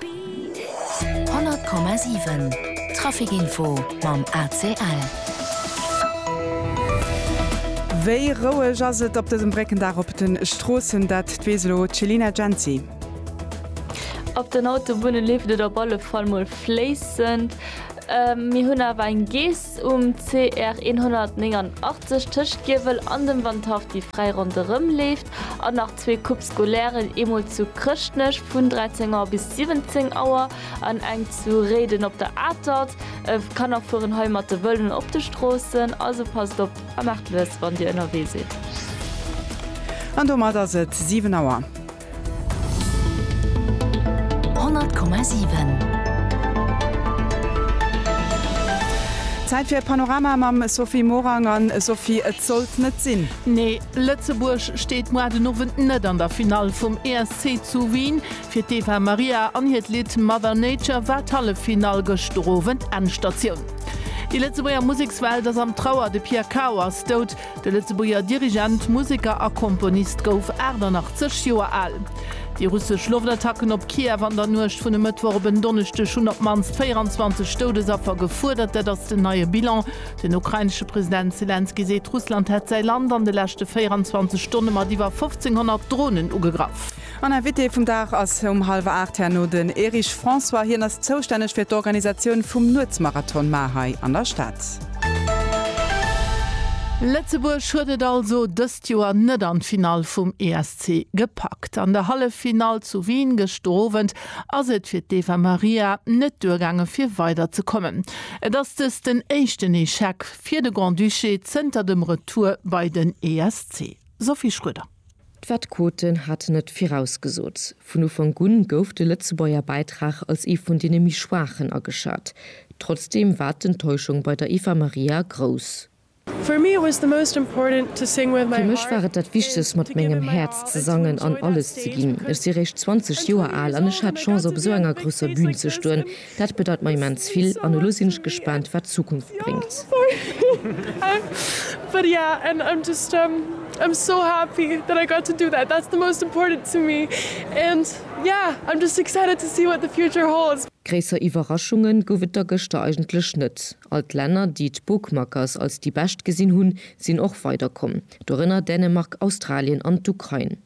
100,7 Trafic Info mam ACL. Wéi roueg ass et op dësem Bréckendag op de Stroossen? Dat weess elo d'Chelina Jency. Op den Autobunne leeft et op alle Fall mol fléissend. Mir hunn awer eng Geess Um CR 189 tëscht Giewel an dem Wandhaff déi fräi ronderëm leeft an nach zwee Coupes scolaires, eemol zu Chrëschtnech vun 13 Auer bis 17 Auer an eng zu Réiden op der Atert. D'Kanner fueren hei mat de Vëloen op de Stroossen, also passt op a maacht lues wann Dir ënnerwee sidd. An domat ass et 7 Auer. Zäit fir e Panorama mam Sophie Morang. An Sophie, et sollt net sinn. Nee, Lëtzebuerg steet moar den Owend net an der Finall vum ESC zu Wien. Fir d'Eva Maria an hiert Lidd Mother Nature war d'Halleffinall gëschter Owend Endstatioun. Déi Lëtzebuerger Musekswelt ass am Trauer, de Pierre Cao ass dout. De Lëtzebuerger Dirigent, Museker a Komponist gouf 88 Joer al. Déi russesch Loftattacken op Kiew an der Nuecht vun e Mëttwoch op en Donneschdeg hunn op d'mannst 24 Doudesaffer gefuerdert. Dat ass den neie Bilan. Den ukrainesche President Selenskyj seet, Russland hätt säi Land an de leschte 24 Stonne mat iwwer 1.500 Dronen ugegraff. An Invité vum Dag ass um hallwer 8 herno den Erich François. Hien ass zoustänneg fir d'Organisatioun vum Nuetsmarathon mar hei an der Stad. Lëtzebuerg huet et also dëst Joer net an d'Finall vum ESC gepackt. An der Halleffinall zu Wien gëschter Owend ass et fir d'Eva Maria net duergaange fir weider ze kommen. Et ass dëst den éischten Echec fir de Grand-Duché zënter dem Retour bei den ESC. Sophie Schroeder. D'Vet Koten hat net virausgesot. Vun Ufank un gouf de Lëtzebuerger Bäitrag als ee vun deene méi schwaachen ageschat. Trotzdeem war d'Enttäuschung bei der Eva Maria grouss. Fir mech war et dat Wichtegst, mat mengem Häerz ze sangen an alles ze ginn. Ech si réischt 20 Joer al an ech hat d'Chance op esou enger grousser Bün ze stoen, Dat bedeut mer immens vill an elo sinn ech gespaant wat d'Zukunft bréngt. Gréisser Iwwerraschunge gouf et da gëschter eigentlech net. All d'Länner, déi d'Bookmakers als déi bescht gesinn hunn, sinn och weiderkomm. Dorënner Dänemark, Australien an d'Ukrain.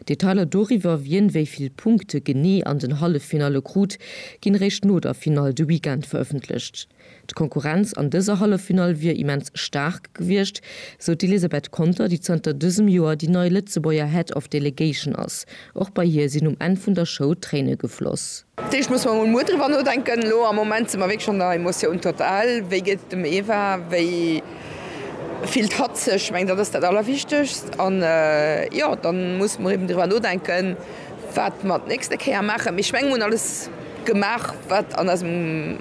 Detailer doriwwer, wien wéi vill Punkte genee an den Halleffinalle krut, ginn eréischt no der Finall de Weekend verëffentlecht. D'Konkurrenz an dëser Halleffinall wier immens staark gewiescht, sou d'Elisabeth Conter, déi zanter dësem Joer déi nei Lëtzebuerger Head of Delegation ass. Och bei hir sinn um Enn vun der Show Tréine gefloss. Dat heescht, musse mer emol muer driwwer nodenken. Elo am Moment si mer wierklech an der Emotion totale. Wéi geet et dem Eva? Wéi fillt hatt sech? Ech mengen, dat ass dat Allerwichtegst. An jo, da musse mer eben driwwer nodenken, wat mer d'nächste Kéier maachen. Mee ech mengen, mer hunn alles gemaach, wat an eisem,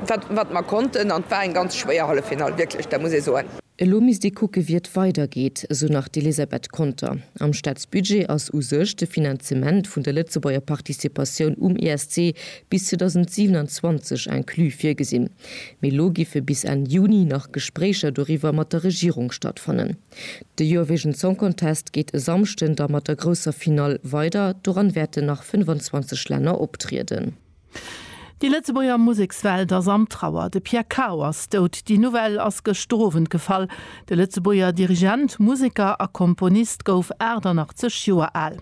wat, wat mer konnten. An et war eng ganz schwéier Halleffinall, wierklech, dat muss ee soen. Elo misst ee kucke wéi et weidergeet, esou nach d'Elisabeth Conter. Am Staatsbudget ass u sech de Finanzement vun der Lëtzebuerger Participatioun um ESC bis 2027 inclus virgesinn. Mee elo giffe bis Enn Juni nach Gespréicher doriwwer mat der Regierung stattfannen. De Eurovision Song Contest geet e Samschden da mat der grousser Finall weider. Doran wäerten nach 25 Länner optrieden. Déi Lëtzebuerger Musekswelt ass an Trauer, de Pierre Cao ass dout. Déi Nouvelle ass gëschter Owend gefall. De Lëtzebuerger Dirigent, Museker a Komponist gouf 88 Joer al.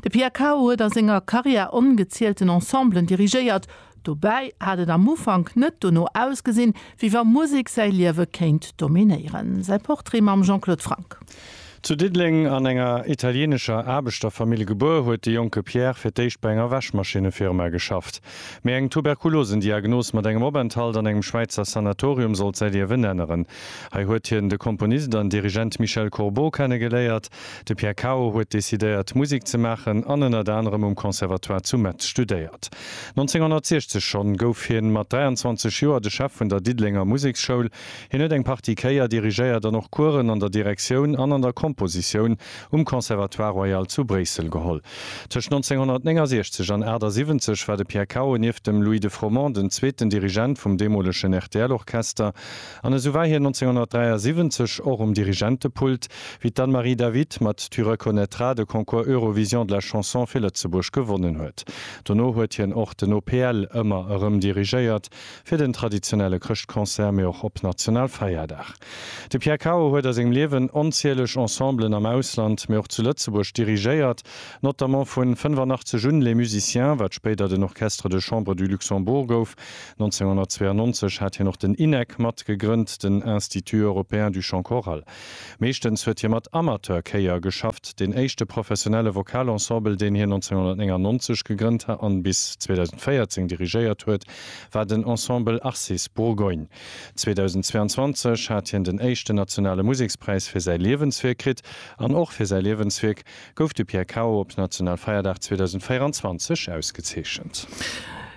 De Pierre Cao huet a senger Karriär ongezielten Ensemblen dirigéiert. Dobäi hat et am Ufank net dono ausgesinn, wéi wa Musek säi Liewe kéint dominéieren. Säi Portrait mam Jean-Claude Franck. Zu Diddeleng an enger italienescher Aarbechterfamill gebuer, huet de jonke Pierre fir d'éischt bei enger Wäschmaschinnefirma geschafft. Mee eng Tuberkulosendiagnos mat engem Openthalt an engem Schwäizer Sanatorium sollt säi Liewen änneren. Hei huet hien de Komponist an Dirigent Michel Courbeau kennegeléiert. De Pierre Cao huet decidéiert, Musek ze maachen an ënnert anerem um Conservatoire zu Metz studéiert. 1960 schonn gouf hie mat 23 Joer de Chef vun der Diddelenger Museksschoul. Hien huet eng Partie Chéier dirigéiert an och Coursen an der Direktioun an an der Kompositioun um Conservatoire Royal zu Bréissel geholl. Tëscht 1969 an 78 war de Pierre Cao nieft dem Louis de Froment den zweeten Dirigent vum deemolegen RTL-Orchester an esou war hien 1973 och um Dirigentepult, wéi d'Anne-Marie David mat Tu reconnaîtras de Concours Eurovision de la Chanson fir Lëtzebuerg gewonnen huet. Dono huet hien och den OPL ëmmer erëm dirigéiert. fir den traditionelle Chrëschtconcert, mee och op Nationalfeierdag. De Pierre Cao huet a sengem Liewen onzieleg Ensemblen am Ausland, mee och zu Lëtzebuerg dirigéiert, notamment vu 85 un Les Musiciens, wat spéider den Orchestre de Chambre du Luxembourg gouf. 1992 hat hien och den INEC mat gegrënnt, den Institut européen du chant choral. Meeschtens huet hie mat Amateurchéier geschafft. Den éischte professionelle Vokalensembel, deen hien 1999 gegrënnt an bis 2014 dirigéiert huet, war den Ensemble Arcis Bourgogne. 2022 hat hien den éischten nationale Musekspräis fir säi Liewenswierk kritt an och fir säi Liewenswierk gouf de Pierre Cao op Nationalfeierdag 2024 ausgezeechent.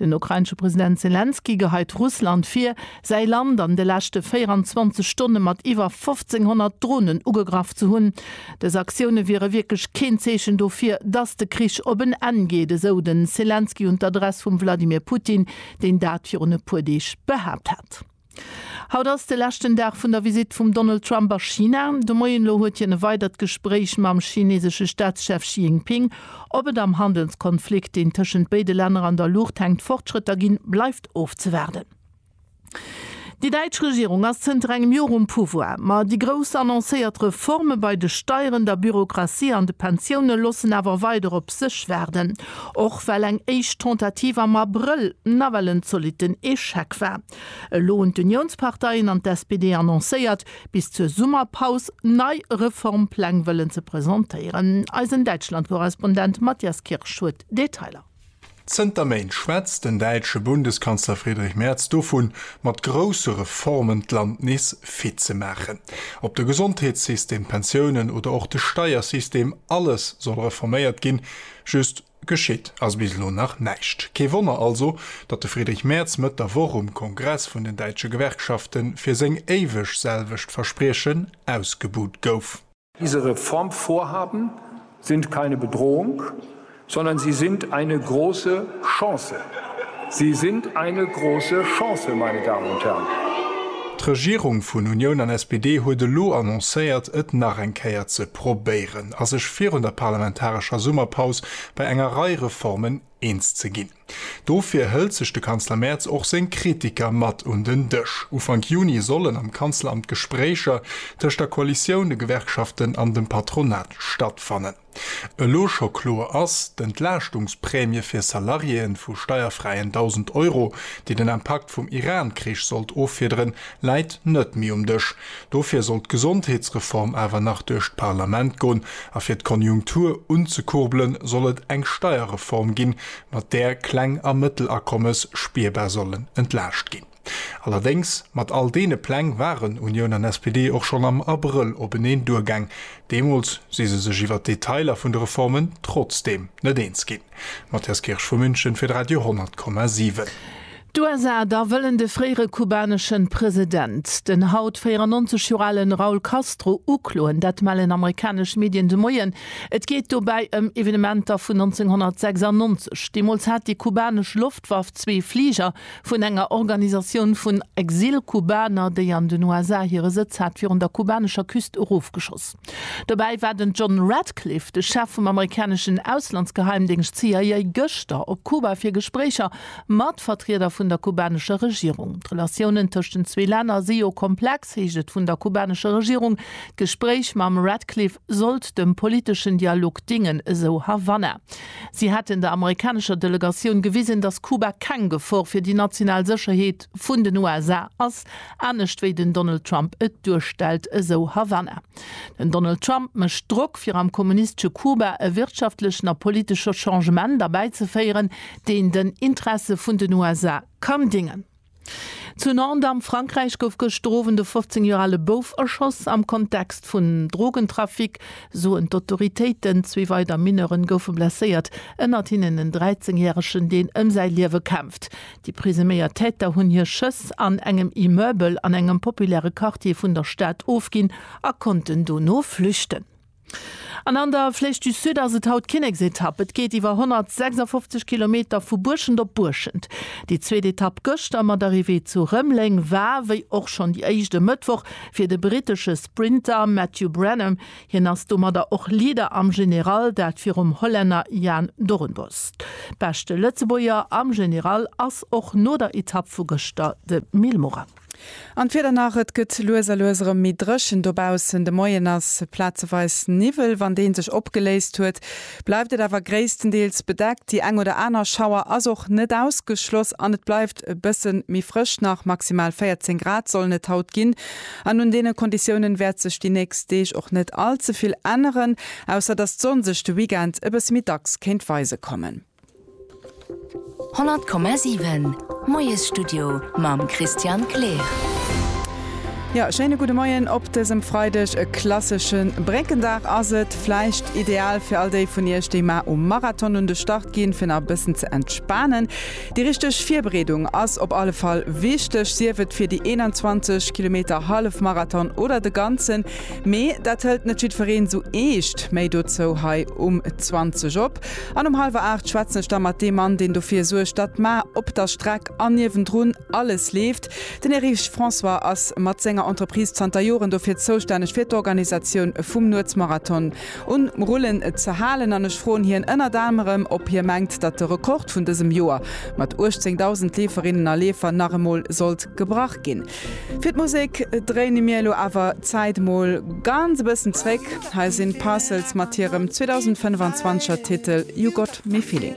Den ukrainesche President Selenskyj geheit Russland vir, säi Land an de leschte 24 Stonne mat iwwer 1.500 Dronen ugegraff ze hunn. Dës Aktioune wiere wierklech keen Zeechen dofir, datt de Krich op en Enn geet, esou de Selenskyj un d'Adress vum Wladimir Putin, deen dat virun e puer Deeg behaapt hat. Haut ass de leschten Dag vun der Visitt vum Donald Trump a China. De Moien elo huet hien e weidert Gespréich mam chinesesche Staatschef Xi Jinping. Ob et am Handelskonflikt, deen tëschent béide Länner an der Luucht hänkt, Fortschrëtter ginn, bleift ofzewaarden. Déi däitsch Regierung ass zënter engem Jor um Pouvoir. Ma déi grouss annoncéiert Reforme bei de Steieren, der Bürokratie an de Pensioune loossen awer weider op sech waarden. Och well eng éischt Tentative am Abrëll nawell en zolitten Echec war. Elo hunn d'Uniounsparteien an d'SPD annoncéiert, bis zur Summerpaus nei Reformpläng wëllen ze presentéieren. Eisen Däitschland-Korrespondent Matthias Kirsch huet Detailer. Zënter Méint schwätzt den däitsche Bundeskanzler Friedrich Merz dovun, mat grousse Reformen d'Land nees fit ze maachen. Ob de Gesondheetssystem, d'Pensiounen oder och de Steiersystem, alles soll reforméiert ginn. Just Geschitt ass bis elo nach näischt. Kee Wonner also, datt de Friedrich Merz Mëtt der Woch um Kongress vun den däitsche Gewerkschafte fir seng éiweg selwecht Verspriechen ausgebuht gouf. Diese Reformvorhaben sind keine Bedrohung, sondern sie sind eine große Chance. Sie sind eine große Chance, meine Damen und Herren. D'Regierung vun Unioun an SPD huet elo annoncéiert, et nach eng Kéier ze. probéieren a sech virun der parlamentarescher Summerpaus bei enger Rei Reformen eens ze ginn. Dofir hëlt sech de Kanzler Merz och seng Kritiker mat un den Dësch. Ufank Juni sollen am Kanzleramt Gespréicher tëscht der Koalitioun, de Gewerkschaften an dem Patronat stattfannen. Elo scho kloer ass, D'Entlaaschtungsprämie fir Salariéeën vu steierfräien 1.000 Euro, déi den Impakt vum Iran-Krich sollt offiederen, läit net méi um Dësch. Dofir sollt d'Gesondheetsreform awer nach duerch d'Parlament gon, a fir d'Konjunktur unzekurbelen, soll et eng Steierreform ginn, mat där Kleng a Mëttelakommes spierbar sollen entlaascht ginn. Allerdéngs, mat all deene Pläng waren Unioun an SPD och schonn am Abrëll openeen duergaang. Deemools si se sech iwwer d'Detailer vun de Reformen trotzdeem net eens ginn. Matthias Kirsch vu München fir d'Radio 100,7. D'USA da wëllen de fréiere kubaneschen President, den haut 94 Joer alen Raul Castro, ukloen. Dat mellen amerikanesch Medien de Moien. Et geet dobäi ëm Evenementer vun 1996. Deemools hat déi kubanesch Loftwaff zwee Fliger vun enger Organisatioun vun Exil-Kubaner, déi an den USA hire Sëtz hat, virun der kubanescher Küst erofgeschoss. Dobäi war den John Ratcliffe, de Chef vum amerikaneschen Auslandsgeheimdéngscht CIA, gëschter op Kuba fir Gespréicher mat Vertrieder vun der kubanescher Regierung. D'Relatiounen tëscht den zwee Länner si jo komplex, heescht et vun der kubanescher Regierung. D'Gespréich mam Ratcliffe sollt dem politeschen Dialog dingen, esou Havanna. Si hätten der amerikanescher Delegatioun gewisen, datt Kuba keng Gefor fir déi national Sécherheet, Chef vun den USA ass, anescht wéi den Donald Trump et duerstellt, esou Havanna. Den Donald Trump mécht Drock fir am kommunistesche Kuba e wirtschaftlechen a politesche Changement erbäizeféieren, deen den Interesse vun den USA kann dingen. Zu Nantes am Frankräich gouf gëschter Owend e 15 Joer ale Bouf erschoss. Am Kontext vun Drogentrafic, soen d'Autoritéiten. Zwee weider Mineure goufe blesséiert, ënnert hinnen en 13 järegen, deen ëm säi Liewe kämpft. Déi presuméiert Täter hunn hir Schëss an engem Immeubel an engem populäre Quartier vun der Stad ofginn a konnten dono flüchten. An an der Flèche du Sud ass et haut Kinneksetapp. Et geet iwwer 156 Kilometer vu Buerschent op Buerschent. Déi zweet Etapp gëschter mat Arrivée zu Rëmeleng war, wéi och schonn déi éischt e Mëttwoch, fir de brittesche Sprinter Matthew Brennan Hien ass domadder och Leader am General, dat virum Hollänner Jaan Doornbos. Beschte Lëtzebuerger am General ass och no der Etapp vu gëschter de Mil Morin. An d'Wieder nach, Et gëtt lues a lues erëm méi dréchen dobaussen. De Moien ass plazeweis Niwwel, wann dee sech opgeléist huet, bleift et awer gréisstendeels bedeckt. Déi eng oder aner Schauer ass och net ausgeschloss an et bleift e bësse méi frësch nach, maximal 14 Grad sollen et haut ginn. An un deene Konditiounen wäert sech déi nächst Deeg och net all ze vill änneren, ausser dass d'Sonn sech de Weekend e bësse méi dacks kéint weise kommen. 100,7 Moiesstudio mam Christian Kleer. Jo, schéine gudde Moien op dësem Freideg. E klassesche Bréckendag ass et. Vläicht ideal fir all déi vun Iech, déi mar um Marathon un de Start ginn, fir nach e bëssen ze entspanen. Déi richteg Virbereedung ass op alle Fall wichteg, sief et fir déi 21 Kilometer Hallefmarathon oder de ganzen. Mee dat hëlt net jiddwereen sou eescht. Méi dozou hei um 20 op. An um hallwer 8 schwätzen ech da mat deem Mann, deen dofir suergt, datt mar op der Streck an niewendrun alles leeft. Den Erich François ass mat senger Entreprise zanter Joren dofir zoustänneg fir d'Organisatioun vum Nuetsmarathon. un rullen ze halen an ech froen hien ënnert anerem ob hie mengt datt de Rekord vun dësem Joer mat 18.000 Leeferinnen a Leefer nach emol sollt gebrach ginn. Fir d'Musek dréine mir elo awer d'Zäit mol ganz e bëssen zréck, hei sinn d'Parcels mat hirem 2025er Titel You Got Me Feeling.